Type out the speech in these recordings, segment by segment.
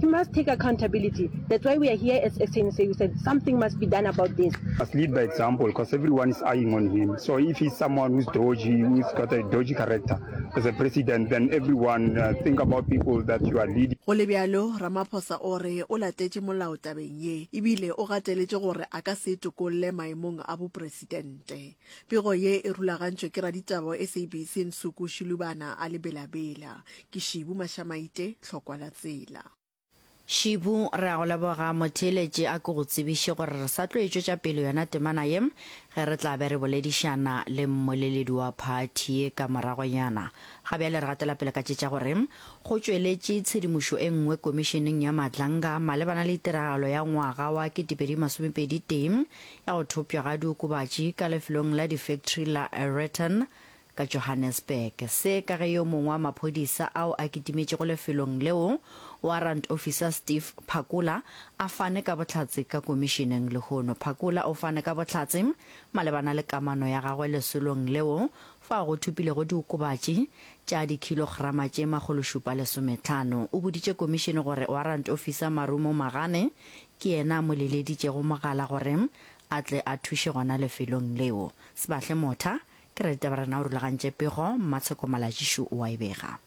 He must take accountability, that's why we are here as SANC, we said something must be done about this. He must lead by example because everyone is eyeing on him, so if he's someone who's dodgy, who's got a dodgy character as a president, then everyone uh, think about people that you are leading. Go le bjalo, Ramaphosa o re o latetše molao tabeng ye ebile o gateletše gore a ka se itokolle maemong a bopresidente. Pego ye e rulagantšwe ke raditaba SABC Nsuku Shilubana a le Bela-Bela. Ke Shibu Mashamaite, hlokwa la tsela. Shibu, re a go leboga. Motheeletši a ke go tsebiše gore re sa tlo e tšwetša pele yona temana ye ge re tla be re boledišana le mmoleledi wa phathi ye ka moragonyana. Ga bjale re gatela pele ka tše tša gore go tšweletše tshedimošo e nngwe Komišeneng ya Madlanga malebana le tiragalo ya ngwaga wa 2021 ya go thopša ga diokobatši ka lefelong la difektri la Aereton ka Johannesburg. Se ka ge yo mongwe wa maphodisa ao a kitimetšego lefelong leo, Warrant Officer Steve Phakula, a fane ka bohlatse ka komišeneng lehono. Phakula o fane ka bohlatse malebana le kamano ya gagwe lesolong leo fao go thopilego diokobatši tša dikhilograma tše makgološupa lesometlhano. O boditše komišene gore Warrant Officer Marumo Magane Ke yena a mo leleditšego mogala gore a tle a thuše gona lefelong leo. Sebahle Motha, Ke ra ditaba rena o rulagantše pego, Mmatsheko Malajišu o a e bega.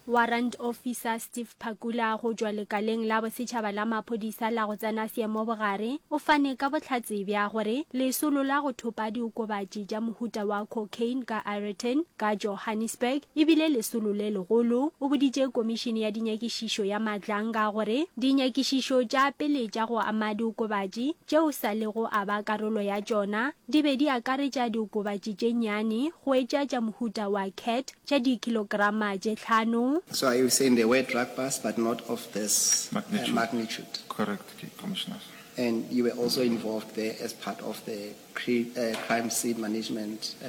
Warrant Officer Steve Phakula go tšwa Lekaleng la Bosetšhaba la Maphodisa la go Tsena Seemo Bogare o fane ka bohlatse bja gore lesolo la go thopa diokobatši tša mohuta wa cocaine ka Ireton ka Johannesburg e bile lesolo le legolo. O boditše Komišene ya Dinyakišišo nyakišišo ya matlang ka gore dinyakišišo tša pele tša go ama diokobatši tšeo sa lego a ba karolo ya tšona di be di akaretša diokobatši tše nnyane go etša tša mohuta wa cat tša dikilograma tše tlhano. So are you saying there were drug busts but not of this Magnitude. magnitude? Correct, Cape Commissioner. And you were also involved there as part of the cri, uh, crime scene management uh,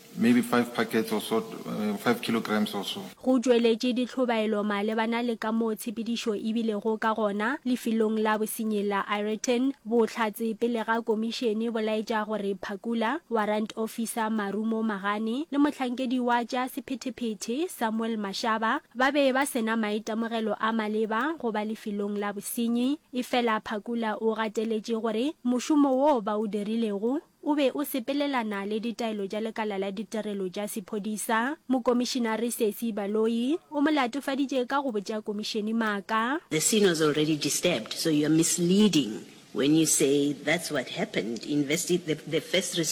Maybe five packets or so, five kilograms or so. Go tšweletše ditlhobaelo malebana le kamoo tshepedišo e bilego ka gona lefelong la bosenyi la Ireton, bohlatse pele ga komišene bo laetša gore Phakula, Warrant Officer Marumo Magane le mohlankedi wa tša sephetephete Samuel Mashaba ba be ba se na maitemogelo a maleba go ba lefelong la bosenyi. Efela Phakula o gateletše gore mošomo woo ba o dirilego O be o sepelelana le ditaelo tša lekala la ditirelo tša sephodisa. Mokomišinare Sesi Baloyi o mo latofaditše ka go botša komišene maaka. The scene was already disturbed so you are misleading when you say that's what happened, investi the the first respon.